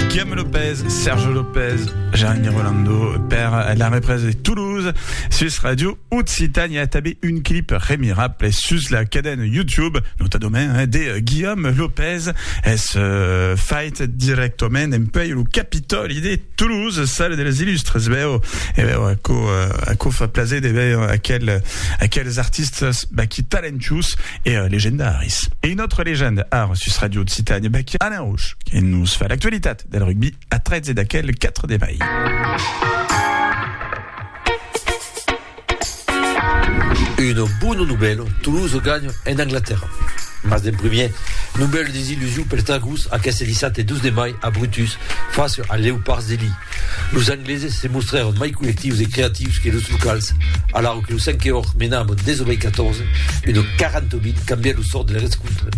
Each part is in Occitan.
Guillaume Lopez, Serge Lopez, Jeanne Rolando per la represa de Toulouse sus Radio Occitania tabé un clip remirable sus la cadena YouTube nota domain eh, de Guillaume Lopez es euh, fait directament en pei lo Capitoli de Toulouse salle des illustres veu e veu a co, euh, a co fa plaser de veu aquel, aquels artistes bah, qui talentius e euh, legendaris e une autre légende ar sus Radio Occitania bah, qui Alain Roche E nos fa l'actualitat del rugbi a 13 d'aquel 4 de mai. Una bona novèla, Toulouse ganha en Anglatèrra. Mas d'en primièr, novèla desillusion pels Dragons aqueste dissabte 12 de mai a Brutus face als Leopards de Lille. Los Angleses se mostrèron mai collectius e creatius que los locals, alara que lo cinque òrt mena amb un 19 a 14, una 40 a 20 cambièt lo sòrt de l'erescontre.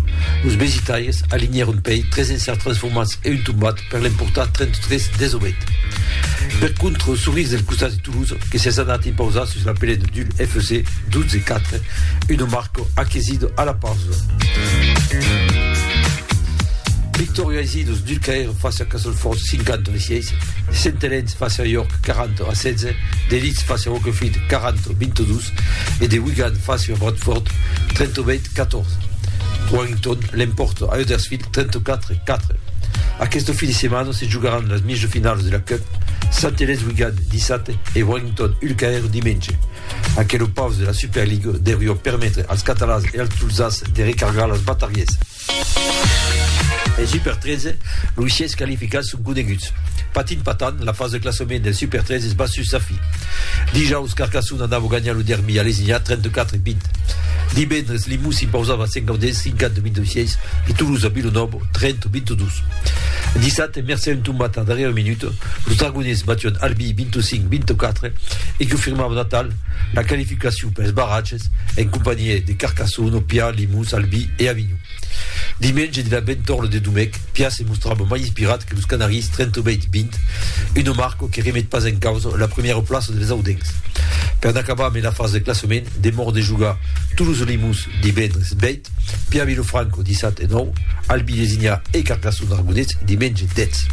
Los Mesitaires alinhèron pei 3 encerts transformats e un tombat per l'emportar 33 a 18. Per contra, lo Sorís del costat de Toulouse que s'es anat impausar sus la pele de Dul FC 12 a 4, una marca aquesida a la pausa. Victòria aicí los Dulcaires. Face a Castleford, 50 a 16, Saint-Helens face a York, 40 a 16, de Leeds face a Wakefield, 40 a 22, e de Wigan face a Bradford, 38 a 14. Warrington l'emporta a Huddersfield, 34 a 4. Aquest fin de setmana se jugaràn las mijo finalas de la Cup, Saint-Helens-Wigan dissabte e Warrington-Ulcaer dimenge. Aquelo paus de la Superliga deurió permetre als catalans e als tolzats de recargar las batarièsas. En Super 13, los sièis qualificats son coneguts. Patint patant, la fasa de classament del Super 13 es bas sus sa fin. Dijaus, Carcassona anava ganhar lo derbi a Lesinha 34-20. Divendres, Limous s'impausava a Saint-Gaudens 50-26 e Toulouse a Villenòve 30-22. Dissabte, mercé a un tombat a darrièra minuta, los Dragoners batión Albi 25-24 e confirmavan atal La qualificacion pels barratges en companhiá de Carcassonne, Opià, Limós, Albi e Avinhon. Dimenge de la Bentorle de Domèc, Pià se mostrava mai inspirat que los Canaris 38-20, una marca que remet pas en causa la premiera plaça dels audencs. Per n'acabar mai la fasa de classament, demòra de jogar Toulouse-Limós divendres 20, Pièr Vilofranco, dissat e nòu, Albi Lesignà e Carcassona Argonés, dimenge, dètz.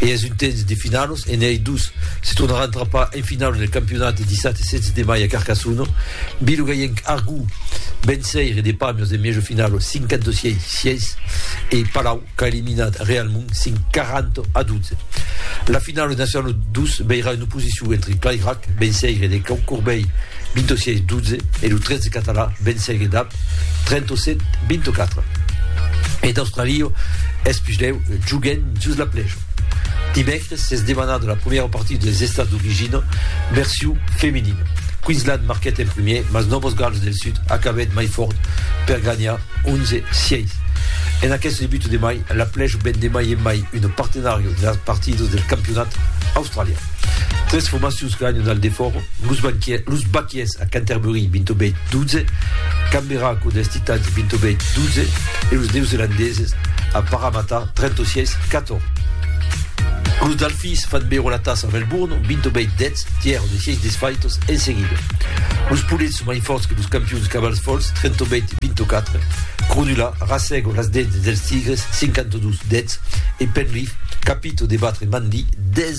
E es un temps de finalos e n'ei dus. Se tornaràn trapar en finalo del campionat de dissat e 16 de mai a Carcassona. Bilogayenc Argó venceire de Pamios en miejo finalo 56, 6 e Palau qu'a eliminat Realmont 5, 40 a 12. La finalo de Nacionalo 2 veirà una oposicion entre Clairac, venceire de Cau Corbei, 26 12 e lo 13 català vencegue dab 37 24. E d'Australio es puslèu joguen jos la plèja. Dimècres s'es demanada la primièra partida dels estats d'origina version femenina. Queensland marquèt en primièr, mas Novos Gals del Sud acabèt mai fòrt per ganhar 11 6. En aqueste debut de mai, la plèja ven de mai en mai una partenària de las partidas del campionat australian. Tres formacions ganhan al defòra Los Baquiers a Canterbury 28-12, Canberra cò dels Titans 28-12 e los Neozelandeses a Parramatta 36-14. Los Dalfis fan bèro la tassa a Melbourne 28-10, tièr de 6 desfaitos en seguida. Los Poulets son mai fòrts que los campions Cavalls Folhs 38-24, Cronulla rasègo las dents dels Tigres 52-10 e Penrith capito de batre Manly 10-0.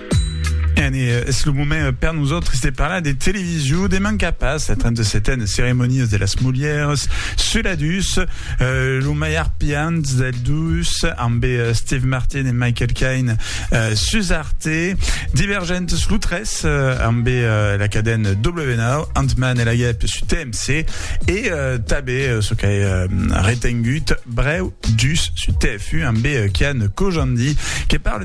Ene, es lo moment per nosautres de parlar de television. Deman qu'a pas la 37a Ceremonia de las Mulheres sul adus, lo maiar piant del dus, ambe Steve Martin e Michael Caine sus Arte, Divergentes lo 3, ambe la caden W9, Ant-Man e la Guèp sus TMC e tabe, çò qu'ai retengut, brèu dus sus TF1 ambe Kian Kojandi que parle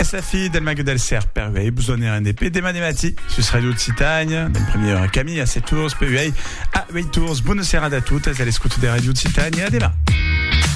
Es la fi del Mague del Cèrp per uèi, vos done rendp dema de matí sus Radio Occitània, d'en primièra Camille a 7 tours, per uèi a 8 tours. Bona serada a totes a l'escota de Radio Occitània, a dema!